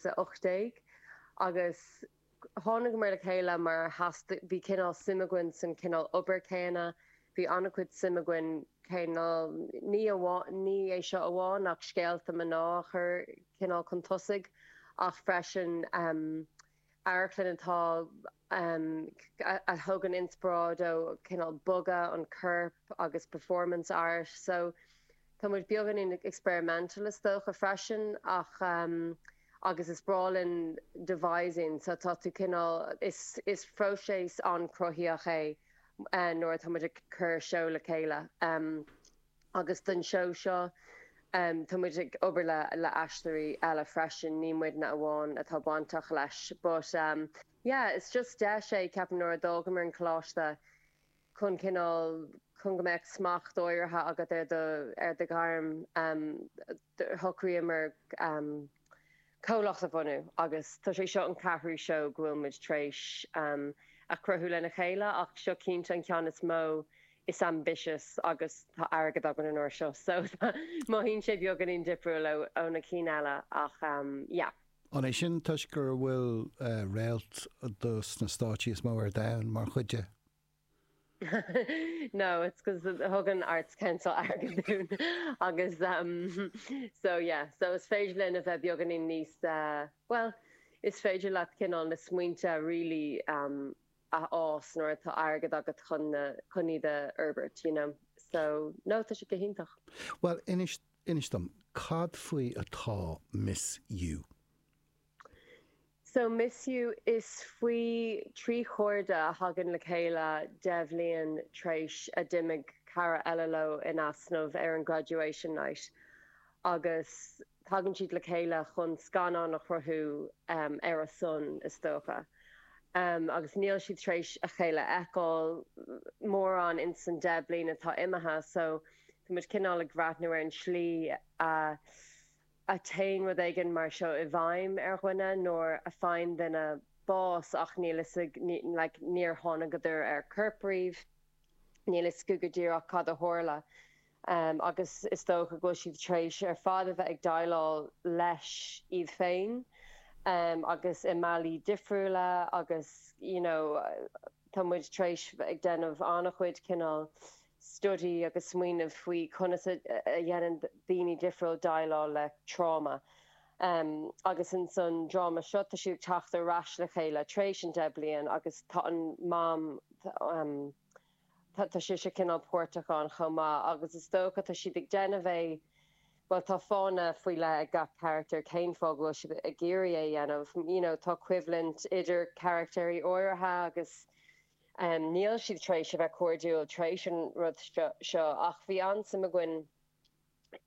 18 agus thángamar le chéile mar theastaigh, bhí cineál suim againn san cineál obair céanna, bhí an-chuid suim againn cineál, ní amháin, ní é seo amháin ach em scéalta mná a chur cineál chun tosaigh ach freisin em amharclann atá, a thugann inspioráid ó cineál bogadh an choirp agus performance art. So. Tá muid beagáinín experimental is dócha freisin ach em agus is breá linn devising so tá tú cineál, is próiseas an-chruthaitheach é nuair atá muid ag cur seó le chéile em agus don seó seo tá muid ag obair le aisteoirí eile freisin, ní muidne amháin atá bainteach leis but yeah is just deis é ceapaim nuair a d'fhágamar an coláiste, chun cineál, chun go mbeadh smacht áirithe agat ar do, ar do ghairm, shocraíomar comhlacht a bhunú agus tá sé seo an ceathrú seó go bhfuil muid tar éis a chruthú lena chéile ach seo cinnte an ceann is mó, is ambitious agus tá airgead againn an uair seo so mothaíonn sé beagáinín difriúil ó na cinn eile ach yeah. An é sin toisc go bhfuil réalta sna stáitsí is mó ar domhan mar chuid de? No, it's because thug an Arts Council airgead dúinn agus um so yeah, so is féidir linn a bheith beagáinín níos well, is féidir leat cineál na smaointe really um a fhás nuair atá airgead agat chun na chun iad a fhorbairt, you know. So no, tá sé go hiontach. Bhuel, inis dom, cad faoi atá Miss You? So Miss You, is faoi thrí chairde a thagann le chéile deich bhliain t'réis a d'imigh cara eile leo in easnamh ar an Graduation Night agus tagann siad le chéile chun scannán a chruthú ar a son, is dócha. Agus níl siad t'réis a chéile a fheiceáil mórán in san deich bliain atá imithe so tá muid cineál ag breathnú ar an tslí a a théann rud éigin mar seo i bhfeidhm ar dhuine nuair a faigheann duine bás ach níl fhios ag like níor thánagadar ar corp riamh, níl fhios acu go díreach cad a tharla em agus is dócha go bhfuil siad tar éis ar fad a bheith ag déileáil leis iad féin em agus i mbealaí difriúla agus you know tá muid tar éis ag déanamh an-chuid cineál study agus smaoineamh faoi conas a dhéanann daoine difriúla déileáil le tráma. Agus insan dráma seo, tá siad ag teacht ar ais le chéile tar éis an deich bliain agus tá an Mam, tá sise cineál páirteach ann chomh maith agus is dócha tá siad ag déanamh é, bhuel tá fáthanna faoi leith ag gach carachtar cén fáth go bhfuil siad ag iarraidh é a dhéanamh. You know, tá coimhlint idir carachtéirí áirithe agus Níl siad tar éis a bheith cairdiúil tar éis an rud seo ach bhí an-suim againn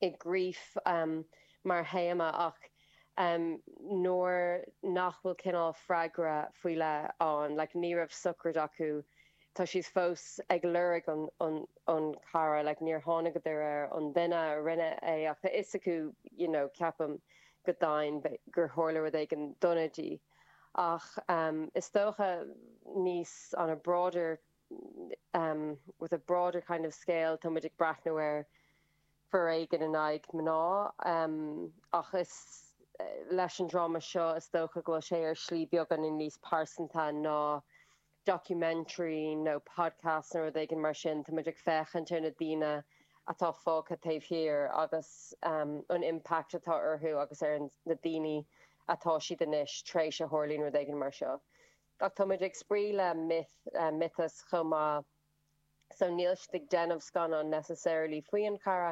i grief mar théama ach nuair nach bhfuil cineál freagra faoi leith ann, like ní raibh sochraid acu, tá siad fós ag lorg an chara, like níor thángadar ar an duine a rinne é ach tá fhios acu, you know, ceapaim go daingean gur tharla rud éigin dona di. Ach is dócha níos on a broader, with a broader kind of scale, tá muid ag breathnú ar foréigean in aghaidh mná ach is leis an dráma seo is dócha go bhfuil sé ar shlí beagáinín níos pearsanta ná documentary nó podcast nó rud éigin mar sin, tá muid ag féachaint ar na daoine atá fágtha taobh thiar agus an impact atá orthu agus ar na daoine atá siad anois tar éis a tharlaíonn rud éigin mar seo. Ach tá muid ag spraoi le myth, miotas chomh maith. so níl siad ag déanamh scannán necessarily faoi an chara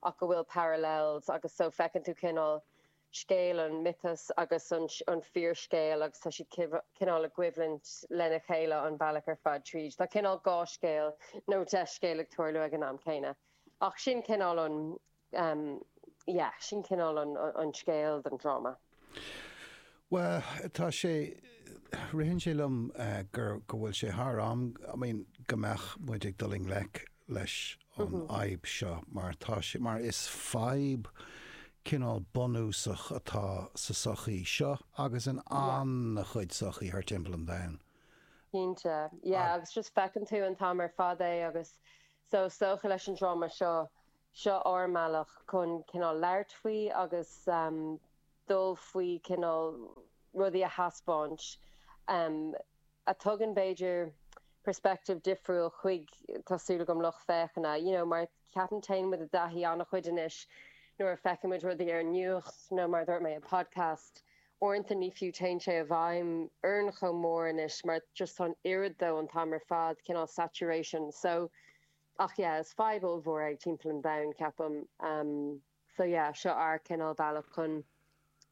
ach go bhfuil parallels agus so feiceann tú cineál scéal an miotas agus an fíorscéal agus tá siad cineál i gcoimhlint lena chéile an bealach ar fad tríd. Tá cineál dhá scéal nó deich scéal ag tarlú ag an am céanna ach sin cineál an yeah, sin cineál an scéal don dráma. Bhuel, tá sé, ritheann sé liom gur, go bhfuil sé thar am, I mean, go mbeadh muid ag dul i ngleic leis an fhadhb seo mar tá sé, mar is fadhb cineál bunúsach atá sa tsochaí seo agus in an-chuid sochaí thar timpeall an domhain. Cinnte, yeah, agus just feiceann tú an t-am ar fad é agus so, is dócha leis an dráma seo, Seo ár mbealach chun cineál labhairt faoi agus dul faoi cineál rudaí a thaispeáint a thugann b'fhéidir perspective difriúil chuig, tá súil agam, lucht féachana. You know, mar ceapaim téann muid i dtaithí an-chuid anois nuair a feiceann muid rudaí ar an nuacht nó mar a dúirt mé i podcast, uaireanta ní fiú téann sé i bhfeidhm orainn chomh mór anois mar just tá an oiread de an t-am ar fad, cineál saturation. So, Ach yeah, is fadhb ollmhór é ag timpeall an domhain, ceapaim. So yeah, seo ár cineál bealach chun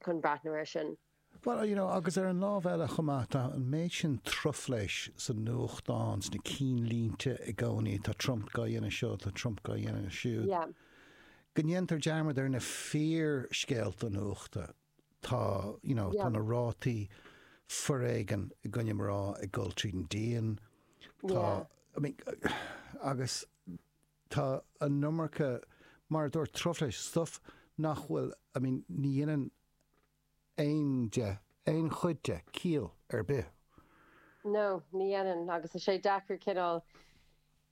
chun breathnú air sin. Bhuel, you know, agus ar an lámh eile chomh maith, tá an méid sin truflais sa nuachtán, sna cinnlínte i gcónaí, tá Trump gá dhéanamh seo, tá Trump gá dhéanamh siúd, Yeah. go ndéantar dearmad ar na fíor-scéalta nuachta. Tá, you know, tá na rátaí foréigean i gcoinne mná ag dul tríd an díon. Tá, I mean, agus tá an iomarca, mar a dúirt, truflais, stuff nach bhfuil, I mean, ní dhéanann aon de, aon chuid de, ciall ar bith. No, ní dhéanann, agus tá sé deacair cineál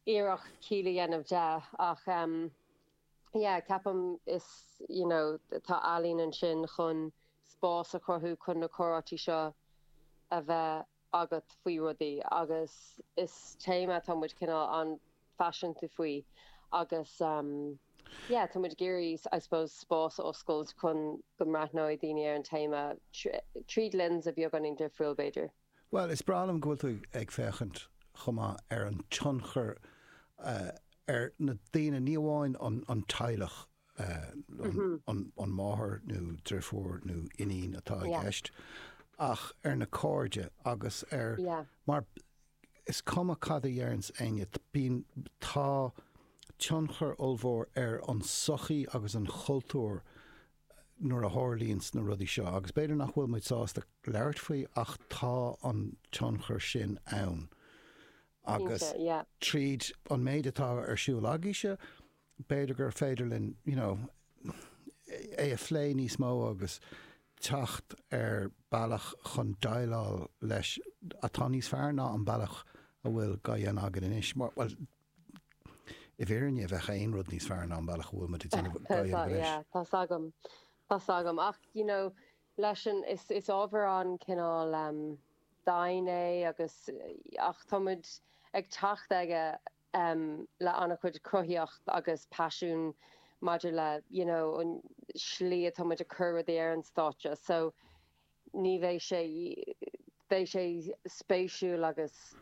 iarracht ciall a dhéanamh de, ach, yeah ceapaim is you know tá ealaín ansin chun spás a chruthú chun na comhráití seo a bheith agat faoi rudaí agus is téama atá muid cineál an-phaiseanta faoi agus em yeah tá muid ag iarraidh I suppose spás a oscailt chun go mbreathnóidh daoine ar an téama tríd lens atá beagáinín difriúil b'fhéidir. Bhuel, is breá liom go bhfuil tú ag féachaint chomh maith ar an tionchar ar na daoine, ní amháin an teaghlach, an máthair nó drifiúr nó iníon atá i gceist, ach ar na cairde agus ar, mar is cuma cad a deireann éinne, bíonn, tá tionchar ollmhór ar an sochaí agus an chultúr nuair a tharlaíonns na rudaí seo, agus b'fhéidir nach bhfuil muid sásta labhairt faoi, ach tá an tionchar sin ann. Agus tríd an méid atá ar siúl agaíse, b'fhéidir gur féidir linn, you know, é a phlé níos mó agus teacht ar bealach chun déileáil leis atá níos fearr ná an bealach a bhfuil gá dhéanamh againn anois. Bhuel, I bhfírinne, bheadh aon rud níos fearr ná an bealach a bhfuil muid ag déanamh a dhéanamh anois. Yeah, tá's agam, tá's agam. Ach, you know, leis an, is, is ábhar an-cineál dian é agus, ach tá muid ag teacht aige le an-chuid cruthaíocht agus paisiún maidir le, you know, an slí atá muid ag cur rudaí ar an stáitse. So, Ní bheidh sé, beidh sé spéisiúil agus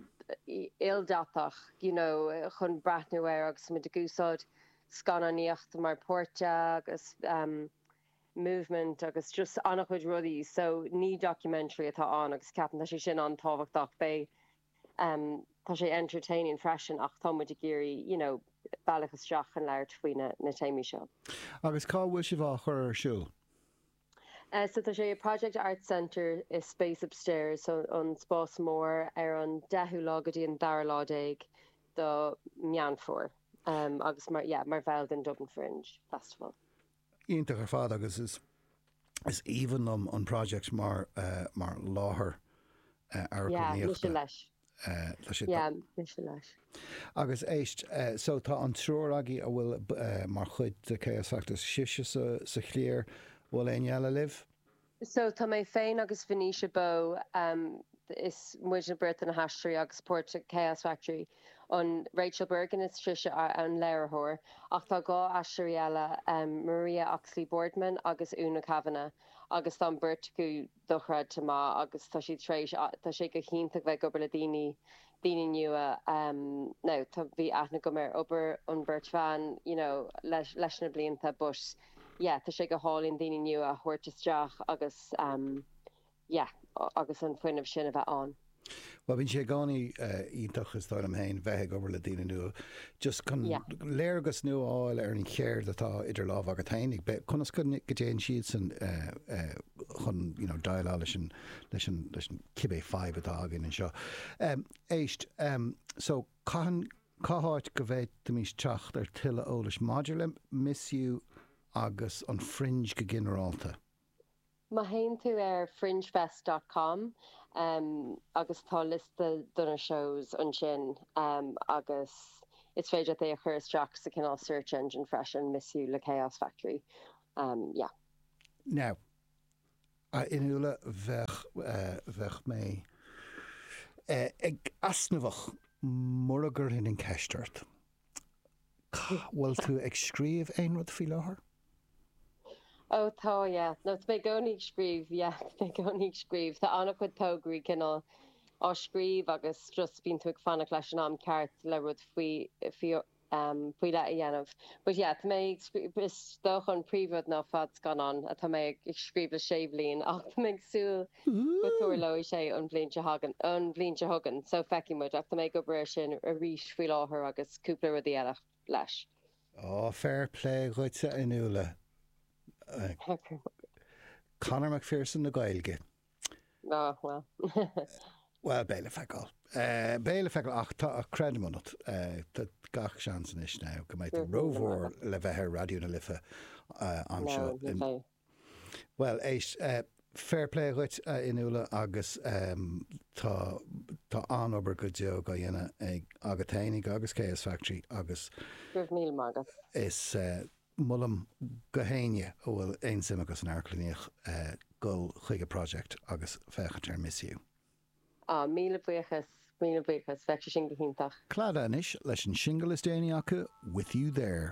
ildatach you know chun breathnú air agus muid ag úsáid scannánaíocht mar páirt de agus ehm movement agus just an-chuid rudaí so ní documentary atá ann agus ceapaim tá sé sin an-tábhachtach, beidh ehm tá sé entertaining freisin ach tá muid ag iarraidh you know bealach isteach chun labhairt faoi na na téamaí seo. Agus cá bhfuil sibh á chur ar siúl? So tá sé i Project Arts Centre i Space Upstairs, so an spás mór, ar an deichiú lá go dtí an dara lá déag do Meán Fómhair agus mar, yeah, mar bhall den Dublin Fringe Festival. Iontach ar fad agus is, is aoibhinn liom an Project mar, mar láthair amharclannaíochta. Yeah, mise leis. Yeah, mise leis. Agus éist, so tá an triúr agaí a bhfuil mar chuid de Chaos Factory, sibhse sa chliar, bhfuil éinne eile libh? So tá mé féin agus Venetia Bowe, is muidne beirt na haisteoirí a chuid páirt Chaos Factory, an Rachel Bergin is sise an léiritheoir, ach tá dhá aisteoirí eile, Maria Oxley-Boardman agus Úna Kavanagh, agus tá an bheirt acu. dochreidte maith agus tá siad tar éis, tá sé go hiontach bheith ag ag obair le daoine, daoine nua now tá, bhí aithne agam ar obair an bheirt bhan you know leis, leis na blianta but yeah tá sé go hálainn daoine nua a thabhairt isteach agus yeah agus an fuinneamh sin a bheith ann. Bhuel bíonn sé i gcónaí iontach is dóigh liom féin bheith ag obair le daoine nua just chun léargas nua a fháil ar an cheird atá idir lámh agat féin, a bheith, conas go dtéann siadsan chun you know déileáil leis an leis an leis an cibé fadhb atá againn anseo. Éist, so cathain, cá háit go bhféadfaimís teacht ar tuilleadh eolais maidir le M.I.S.U. agus an Fringe go ginearálta? Má théann tú ar fringefest dot com agus tá liosta do na shows ansin agus is féidir leat é a chur isteach sa cineál search engine freisin, M.I.S.U. le Chaos Factory. Yeah. Now, a Fhionnuala, bheadh, bheadh mé ag easnamhach mura gcuirfinn an ceist ort, bhfuil tú ag scríobh aon rud faoi láthair? Ó tá, yeah. No, tá mé i gcónaí ag scríobh, yeah, tá mé i gcónaí ag scríobh. Tá an-chuid tograí cineál á scríobh agus just bíonn tú ag fanacht leis an am ceart le rud faoi, faoi, em, faoi leith a dhéanamh. But yeah, tá mé ag scríobh, is dócha an príomhrud ná fadscannán atá mé ag scríobh le sé bhliain ach tá mé ag súil go dtarlóidh sé an bhliain a thagann, an bhliain seo chugainn. So feicfidh muid ach tá mé ag obair air sin arís faoi láthair agus cúpla rudaí eile. leis. Oh, fair play dhuit a Fhionnuala. Conor McPherson na Gaeilge. Oh, well. Well, beidh le feiceáil. Beidh le feiceáil ach creidim ionat. Tá gach seans anois now go mbeidh tú rómhór le bheith ar Raidió na Life anseo. Bhuel, éist, fair play dhuit, a Fhionnuala, agus tá, tá an-obair go deo á dhéanamh ag, agat fhéinig agus Chaos Factory agus. Go raibh míle maith agat. Is molaim go héinne a bhfuil aon suim acu san amharclannaíocht dul chuig a Project agus féachaint ar MorphMe. Á, míle buíochas, míle buíochas, bheadh sé sin go hiontach. Clannad anois leis an singil is déanaí acu, White Fool.